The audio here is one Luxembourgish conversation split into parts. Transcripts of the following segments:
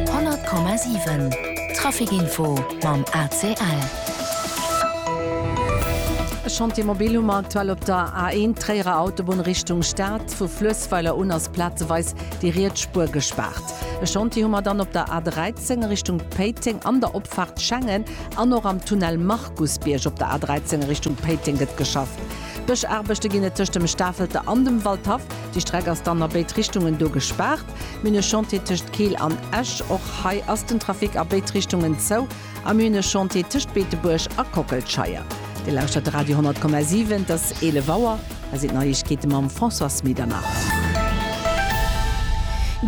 100,7 Traficinfo mam ACL. E Chantier mobil hu mer aktuell op der A1, Tréierer Autobunn Richtung Stad. Vu Fluessweiler un ass plazeweis déi riets Spuer gespaart. E Chantier hu mer dann op der A13 Richtung Péiteng an der Opfaart Schengen an och am Tunnel Markusbierg. Op der A13 Richtung Péiteng gëtt geschafft. Bëschaarbechte ginn et tëscht dem Stafelter an dem Waldhaff. Déi Streck ass dann a béid Richtungen do gespaart. Mir hunn e Chantier tëscht Keel an Esch. Och hei ass den Trafic a béid Richtungen zou. A mir hunn e Chantier tëscht Beetebuerg a Kockelscheier. Dir lauschtert de Radio 10,7. Et ass 11 Auer. Hei sinn d'Neiegkeete mam Françoise Medernach.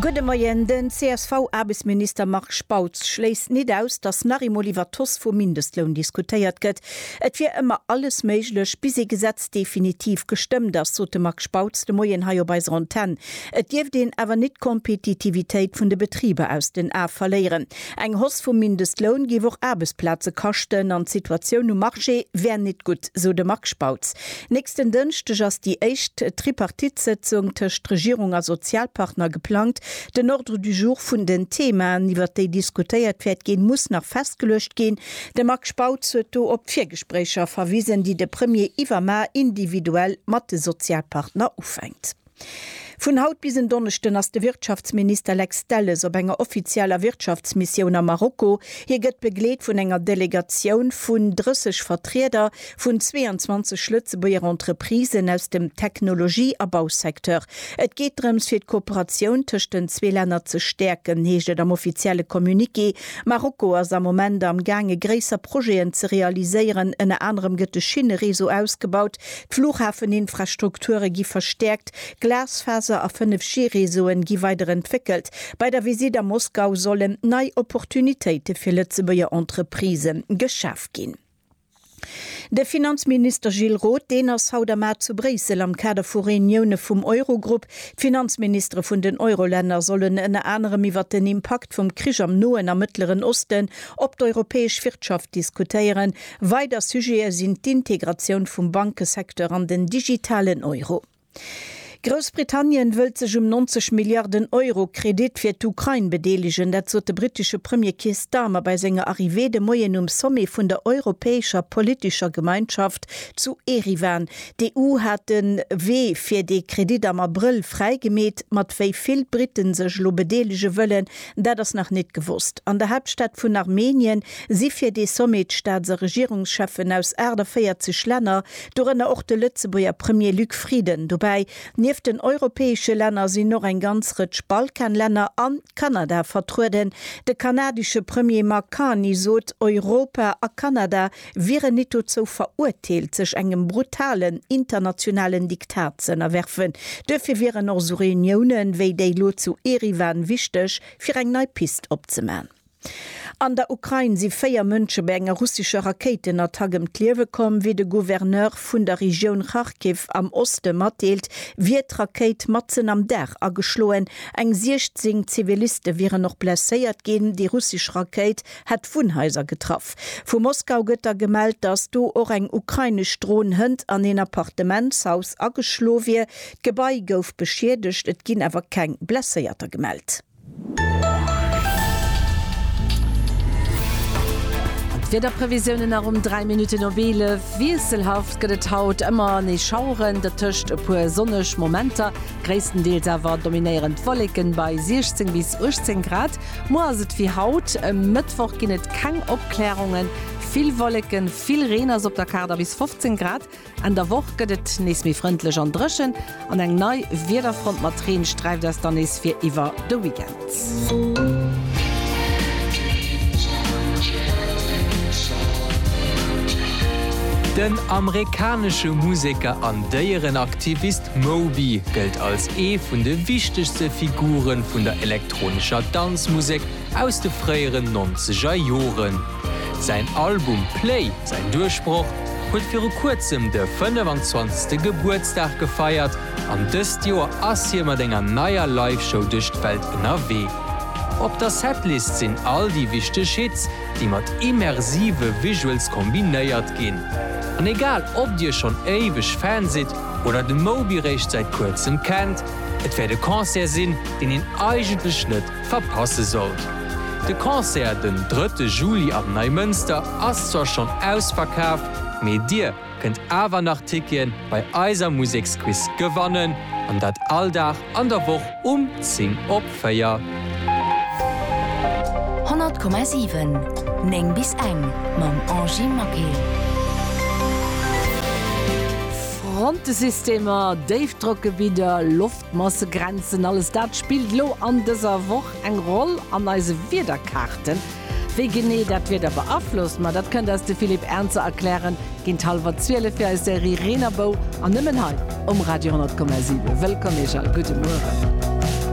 Gudde Moien. Den CSV-Aarbechtsminister Marc Spautz schléisst nit aus, datt nach eemol iwwer d'Hausse vum Mindestloun diskutéiert gëtt. Et wier ëmmer alles méiglech, bis ee Gesetz Text definitiv gestëmmt ass, sot de Marc Spautz de Moien hei op eiser Antenn. Et dierft een awer nit d'Kompetitivitéit vun de Betriber aus den A verléieren. Eng Hausse vum Mindestloun géif och Aarbechtsplaze kaschten an d'Situatioun um Marché wär nit gutt, sou de Marc Spautz. Nächsten Dënschdeg ass déi éischt Tripartite-Sëtzung tëscht Regierung a Sozialpartner geplangt. Den Ordre du jour vun den Themaen, iwwert déi diskutéiert wäert ginn, muss nach festgeluecht ginn. De Marc Spautz huet do op d'Virgespréicher verwisen, déi de Premier iwwermar individuell mat de Sozialpartner ufänkt. Vun haut bis en Donneschden ass de Wirtschaftsminister Lex Delles op enger offizieller Wirtschaftsmissioun a Marokko. Hie gëtt begleet vun enger Delegatioun vun 30 Vertrieder Vun 22 Lëtzebuerger Entreprisen aus dem Technologie a Bausecteur. Et geet drëms fir d'Kooperatioun tëscht den zwee Länner ze stäerken, heescht et am offizielle Communiqué. Marokko ass am Moment am gaange gréisser Projeten ze realiséieren. Ënner anerem gëtt de Schinnereseau ausgebaut, d'Flughafeninfrastrukture gi verstäerkt, Glasfaser a 5G-Reseauen gi weider entwéckelt. Bei der Visitt a Moskau sollen nei Opportunitéite fir Lëtzebuerger Entreprise geschaf ginn. De Finanzminister Gilles Roth, deen ass haut am A zu Bréissel am Kader vu Reunioune vum Eurogrupp. D'Finanzministere vun den Eurolänner sollen ënner anerem iwwert den Impakt vum Krich am Noen a Mëttleren Osten op d'europäesch Wirtschaft diskutéieren. Weider Sujete sinn d'Integratioun vum Bankesecteur an den digitalen Euro. Groussbritannien wëllt sech um 90 Milliarden Euro Kredit fir d'Ukrain bedeelegen. Dat sot de brittesche Premier Keir Starmer bei senger Arrivée de Moien um Sommet vun der europäescher politescher Gemeinschaft zu Eriwan. D'EU hat de Wee fir dee Kredit am Abrëll fräigemeet. Mat wéi vill Britten sech elo bedeelege wëllen, dat ass nach net gewosst. An der Haaptstad vun Armenien si fir dee Sommet d'Staats a Regierungscheffen aus 48 Länner, dorënner och de Lëtzebuerger Premier Luc Frieden. Dobäi, nieft den europäesche Länner sinn och eng ganz Rëtsch Balkanlänner an Kanada vertrueden. De kanadesche Premier Mark Carney sot, Europa a Kanada wieren nit dozou verurteelt, sech engem brutalen internationalen Diktat ze ënnerwerfen. Duerfir wieren och esou Reuniounen, wéi déi lo zu Eriwan wichteg, fir eng nei Pist opzeman. An der Ukrain si véier Mënsche bei enger russescher Rakéitenattack ëm d'Liewe komm. Wéi de Gouverneur vun der Regioun Kharkiv am Oste matdeelt, wier d'Rakéit matzen am Dag ageschloen. Eng 16 Ziviliste wieren och blesséiert ginn. Déi russesch Rakéit hätt Wunnhaiser getraff. Vu Moskau gëtt da gemellt, datt do och eng ukrainesch Dron hënt an een Appartementshaus ageschlo wier. D'Gebai gouf beschiedegt, et ginn awer keng Blesséierter gemellt. D'Wiederprevisiounen nach um 3 Minutten op 11. Wiesselhaft gëtt et haut, ëmmer nees Schaueren, dertëscht e puer sonneg Momenter. Gréisstendeels awer dominéieren d'Wolleken bei 16 bis 18 Grad. Muer ass et wéi haut, e Mëttwoch ginn et keng Opklärungen, vill Wolleken, vill Reen ass op der Kaart a bis 15 Grad. Enn der Woch gëtt et nees méi frëndlech an dréchen, an eng nei Wiederfront mat Reen sträift eis dann nees fir iwwer de Weekend. Den amerikanesche Museker an Déierenaktivist Moby gëllt als ee vun de wichtegste Figure vun der elektronescher Danzmusek, Aus de fréieren nonzeger Joren. Säin Album Play, säin Duerchbroch, huet viru kuerzem de 25. Gebuertsdag gefeiert an dëst Joer ass hie mat enger neier Live-Show duerch d'Welt ënnerwee. Op der Setlist sinn all déi wichteg Hits, déi mat immersive Visuals kombinéiert ginn. An egal ob dir schonn éiweg Fan sidd oder de Moby réischt säit kuerzem kennt, et wäert e Concert sinn, deen een eigentlech net verpasse sollt. De Concert den drëtte Juli am Neimënster ass zwar schonn ausverkaf, mee dir kënnt awer nach Tickete bei eiser Museksquiz gewannen, an dat all Dag an der Woch um 10 op 4. Honnertkommasiwen, néng bis eng, mam Angie Maquet. Frontesystemer, Déifdrockgebidder, Loftdrockgebidder, Massegrenzen, alles dat spillt lo an dëser Woch eng Roll an eise Wiederkaarten. Wéi genee dat d'Wieder beaflosst, ma dat kënnt eis de Philippe Ernzer erklären géint hallwer 12 fir eis Serie Reen a Bou an nëmmen hei um Radio 10,7. Wëllkomm Iech all, gudde Mueren.